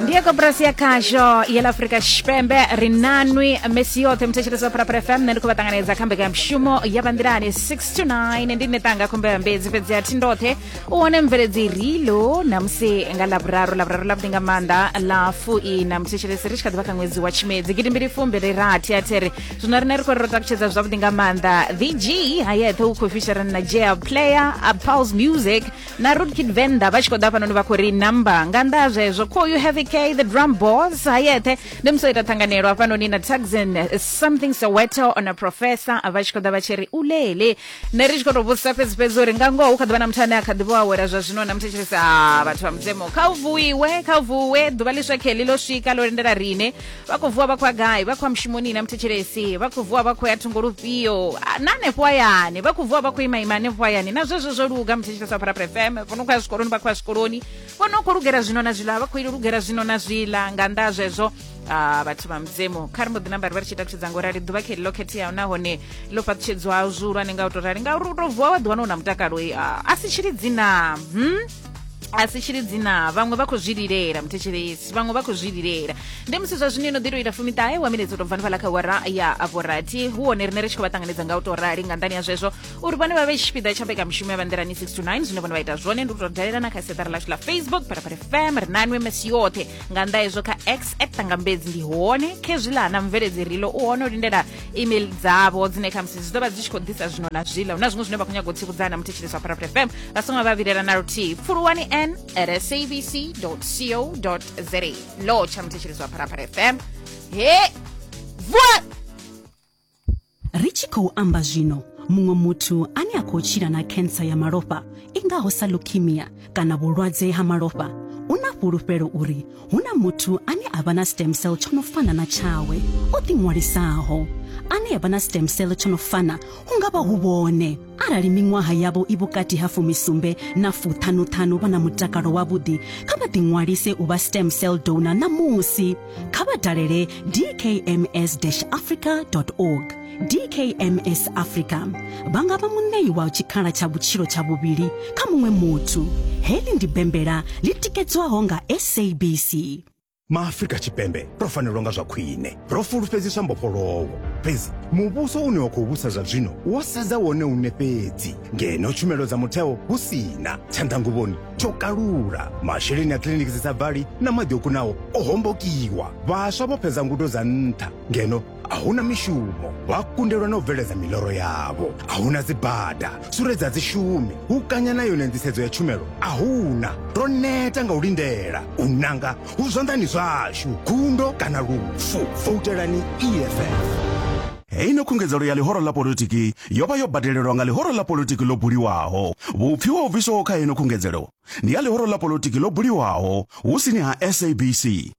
ndiye koporasi ya khasho ya la afrika tshipembe ri nanwi misi yoṱhe muthetshelesi wa pharapara fm nṋe ndi khou vha ṱanganedza kha mbekanyamushumo ya vanḓilani 6 to 9 ndi ne tanga khumbela mbedzi fhedzi a thi ndoṱhe u wane mveledzi rilo namusi nga lavhuraru lavhuraru lavhuḓi nga maanḓa la fui na muthetshelesi ri tshi kha ḓivha kha ṅwedzi wa tshimedzi gidimbili fumbi ri rathi a there zwino riṋe ri khou ri ro takutshedza zwavhuḓi nga maanḓa the g ha yeṱhe u khou fisherana na jea player a pals music na root kid venḓa vha tshi khou ḓa hafhanoni vha khou ri number nga nnḓa ha zwezwo call you heavy k the drum boss ha yeṱhe ndi musi o ita ṱhanganelo hafhanoni na taxin eh, something soweto on a professor vha tshi khou ḓa vha tshi ri ulele nṋe ri tshi khou tou vhudzisa fhedzi fhedzi uri nga ngoho hu kha ḓi vha na muthu ane a kha ḓi vho awela zwa zwino na muthu tshi ri sa vhathu vha mudzimu kha u vuiwe kha u vuwe ḓuvha ḽiswa kheḽi ḽo swika ḽo lindela rine vha khou vuwa vha khou ya gai vha khou ya mushumoni na muthetshelesi vha khou vuwa vha khou ya thungo lufhio Ah, na hanefho hayani vha khou vuwa vha khou ima ima hanefho hayani na zwezwo zwo luga muthetshelesi wa pharapara fm vho no khou ya zwikoloni vha khou ya zwikoloni vho no khou lugela zwino na zwiḽa vha khou lugela zwino na zwiḽa nga nnḓa ha zwezwo Ah, vhathu vha mudzimu kha ri mbo ḓi namba ri vha ri tshi takutshedza ngo rali ḓuvha khe ḽo khetheaho nahone ḽo fhaṱutshedzwaho zwihulwane nga u to rali ngauri u to vuwa wa ḓiwana u na mutakalo eh, ah, a si tshilidzi na hmm? a si tshili dzina vhaṅwe vha khou zwi lilela muthetshelesi vhaṅwe vha khou zwi lilela ndi musi zwa zwino ino ḓi to ita fumiṱahe wa minetse to bvanifhala kha wara ya avorathi hu hone rine ri tshi khou vha ṱanganedza nga u to rali nga nḓani ya zwezwo uri vhone vha vhe tshipiḓa tsha mbekamishumo ya vhanḓirani 6 to 9 zwine vhone vha ita zwone ndi u to dalela na kha seṱari lashu ḽa facebook phalaphala fm ri na nwemes yoṱhe nga nnḓa hezwo kha x at ṱangambedzi ndi hone khezwiḽa na mveledzi rilo u hone u lindela email dzavo dzine khamusi zwi ḓo vha dzi tshi khou ḓisa zwino na zwiḽa hu na zwiṅwe zwine vha khou nyaga u tsivhudzana muthetshelesi wa parapre fm vha songo vha vhilela na luthihi pfuluwani n at sabc co za lo tsha muthetshelesi wa parapre fm he vuwa ri tshi khou amba zwino muṅwe muthu ane a khou tshila na khensa ya malofha i ngaho sa leukemia kana vhulwadze ha malofha u na fhulufhelo uri hu na muthu ane a vha na stem cell tsho no fana na tshawe o ḓiṅwalisaho ane a vha na stem cell tsho no fana hu nga vha hu vhone arali miṅwaha yavho i vhukati ha fumisumbe na fuṱhanuṱhanu vha na mutakalo wavhuḓi kha vha ḓiṅwalise u vha stem cell donor ṋamusi kha vha dalele dkms-africa org dkms africa vha nga vha muṋei wa tshikhala tsha vhutshilo tsha vhuvhili kha muṅwe muthu heḽi ndi bembela ḽi tikedzwaho nga sabc maafrika tshipembe ro fanelwa nga zwa khwine ro fulufhedziswa mbofholowo fhedzi muvhuso une wa khou vhusa zwa zwino wo sedza wone une fhedzi ngeno tshumelo dza mutheo hu sina tshanḓanguvhoni tsho kalula masheleni a kiliniki dzi sa bvali na maḓi o kunaho o hombokiwa vhaswa vho fhedza ngudo dza nṱha ngeno a hu na mishumo vha kundelwa na u bveledza miḽoro yavho a hu na dzibada suredza dzi shumi hu kanya na yone nḓisedzo ya tshumelo a hu na ro neta nga u lindela u nanga hu zwanḓani zwashu gundo kana lufu voutelani eff heino khungedzelo ya ḽihoro ḽa politiki yo vha yo badelelwa nga ḽihoro ḽa politiki ḽo buliwaho vhupfiwa ho bviswaho kha heino khungedzelo ndi ya ḽihoro ḽa politiki ḽo buliwaho hu sini ha sabc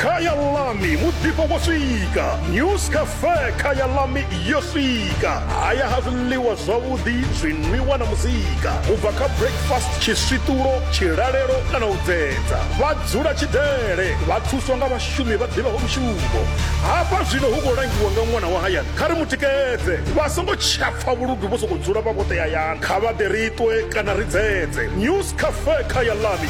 khaya lami muḓifho wo swika news cafe khaya lami yo swika haya ha zwiḽiwa zwavhuḓi zwinwiwa na muzika u bva kha breakfast tshiswiṱulo tshilalelo kana u dzedza vha dzula tshidele vha thuswa nga vhashumi vha ḓivhaho mushumo hafha zwino hu khou langiwa nga ṅwana wa hayani kha ri mu tikedze vha songo tshapfa vhuludu vho sokou dzula vha vhoṱe hayani kha vha ḓe ri ṱwe kana ri dzedze news cafe khaya lami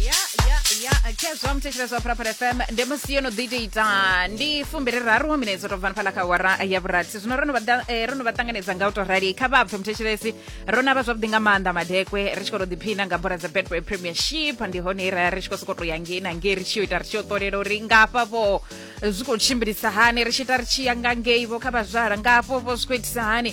ya ya ya khezwa muthetsheleswa phuraphura fm ndi musi yo no ḓi tou ita ndi fumbiri raru wa minetse to bvani fhala kha wara ya vhurathi zwino ro no vha da- eh, ro no vha ṱanganedza nga u to rali kha vha pfe muthetshelesi ro na vha zwavhuḓi nga maanḓa madekwe ri tshi khou to ḓiphina nga bola dza betway premiership ndi hone i ra ri tshi khou sokou to ya ngei na ngei ri tshi yo ita ri tshi yo ṱolela uri ngafha vho zwi khou tshimbilisa hani ri tshi ita ri tshi ya nga ngei vho kha vhazwala ngafho vho zwi khou itisa hani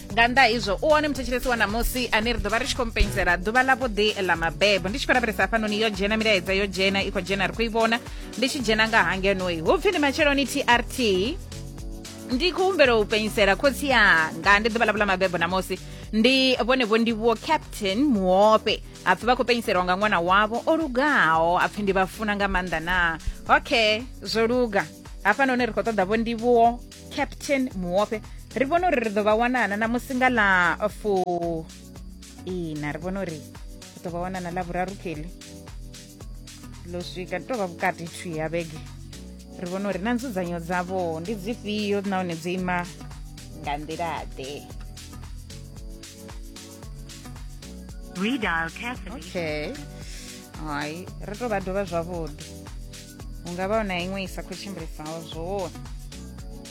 nga nnḓa izwo u one muthetshelesi wa ṋamusi ane ri ḓo vha ri tshi khou mpenyisela ḓuvha ḽa vhuḓi ḽa mabebo ndi tshi khou lavhelesa hafhanoni yo dzhena milaedza yo dzhena i khou dzhena ri khou i vhona ndi tshi dzhena nga hangenoi hu pfi ndi matsheloni trt ndi khou humbela u penyisela khotsi yanga ndi ḓuvha ḽavho ḽa mabebo ṋamusi ndi vhone vho ndi vho captain muope hapfi vha khou penyiselwa nga ṅwana wavho o lugaho hapfi ndi vha funa nga maanḓa na okay zwo luga hafhanoni ri khou ṱoḓa vho ndivhuwo captain muope ri vhona uri ri ḓo vha wanana na musi nga ḽa fu ina ri vhona uri ri ḓo vha wanana ḽa vhuraru keli ḽo swika tou vha vhukati thu ya vhege ri vhona uri na nzudzanyo dzavho ndi dzifhio nahone dzo ima nga nḓilaḓe okay hai ri tou vha dovha zwavhuḓi hu nga vha na iṅwe i sa khou tshimbilisaho zwone